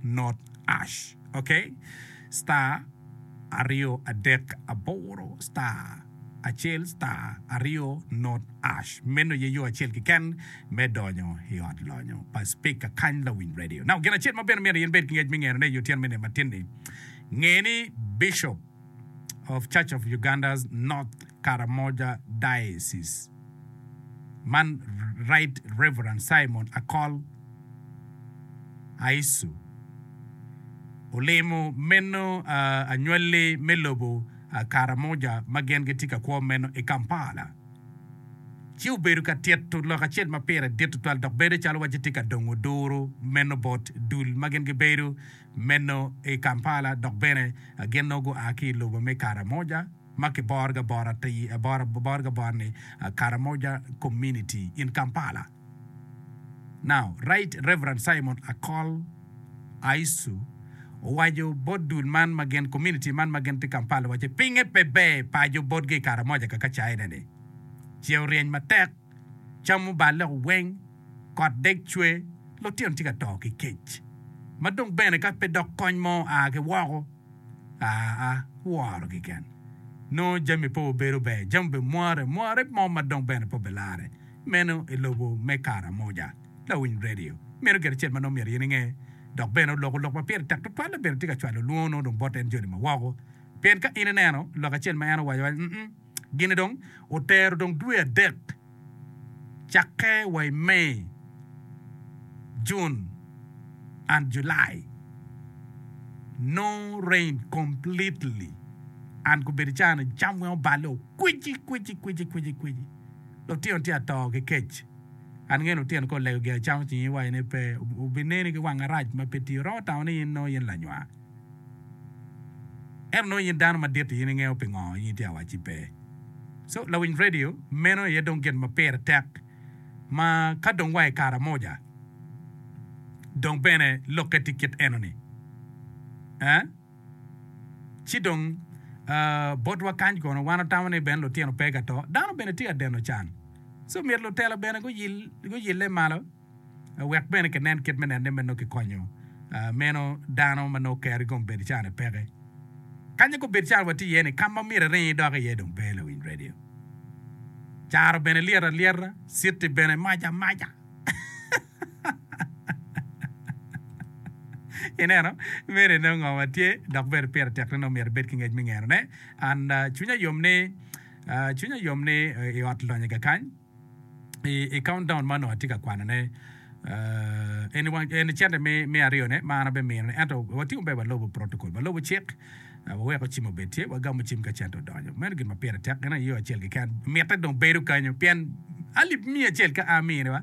not ash ok star aryo adek aboro star acel star aryo not ash meno aye yo acel keken me donyo i ot lonyo pa speaker kany lawiny radio now gin acel ma bene myero in bed ki ngec me ngene aye tyen me nino matin ni nge ni bishop of Church of Uganda's North Karamoja Diocese man Right Rev. Simon Akol Aisu olimo meno anywali me lobo Karamoja ma gin gitye ka kwo meno i Kampala ci obedo ka tito lok acel ma pire dit tutwal dok bedo calo wacci tye ka dongo duru meno bot dul ma gin gibedo Meno i Kampala dok bene gin nongo gua ki i lobo me Karamoja ma kiborogi abora ni Karamoja Community in Kampala now. Right Rev. Simon Akol Aisu owaco bot dul man ma gin community man ma gin tye Kampala wacce pinge pe ber paco botgi i Karamoja kaka caine ni ce oryeny matek camo balle weng. Kot dek cwe, lutino tye ka to ki kec, ma dong bene ka pe dok kony mo a ki woko, aa, woro keken. Nongo jami pe obedo ber, jami obedo mware mware mo ma dong bene pe obilarre meno i lobo me Karamoja. Lawiny redio mito gin acel ma nongo myero in inge, dok bene oloko lok ma pire tek tutwal labongo tye ka cwalo lwongo nongo dong bot en joli ma woko, pien ka in ineno lok acel ma en owaco awaca, um-um. Gin-ni dong otero dong dwe adek cakke wa i May, June and July. No rain completely and gubedo icaa-ni cam weng oballe o kwici kwici kwici kwici kwici. Lutino tye ato ki kec. An ngeyo lutino ka olego gia camo cingi iwaco ni pe, wubineni ki wang arac ma pe tiyo. Romo tamo ni in nongo in lanywa. Ento nongo in dano madit-ti, in ingeyo pingo in itye awacci pe. So, lawiny redio, meno aye dong gin ma pire tek ma ka dong wa i Karamoja, dong bene lokke tye kit enoni. Ee, ci dong botwa kany kono, wan watamo ni bene lutino pe ka to, dano bene tye ka deno can. So, myero lutela bene guyille malo. Wek bene kinen kit me nenne ma nongo kikonyo meno dano ma nongo kero ikom Bedo-cane peke. Kanya kop Bedo-cana watye iye ni kama myero iring idok iye dong pe lawiny radio. Caro bene lyet alyeta, city bene mac amaca. Ineno, meno inongo ngo ma tye dok bene pire tek ni nongo myero ibed ki ngec me ngeno ne. And cwinya yom ni, cwinya yom ni i ot lonye kakany. i countdown ma onongo atye ka kwanone, eni cente me aryo ne ma an abe mino ne. Ento watye maber walubo protocol, walubo cik, waweko cim obed tye, wagamo cim ka cente odonyo. Meno gin ma pire tek gin aye yo acel keken mitte dong bedo kanyo pien alip miya acel ka a miniwa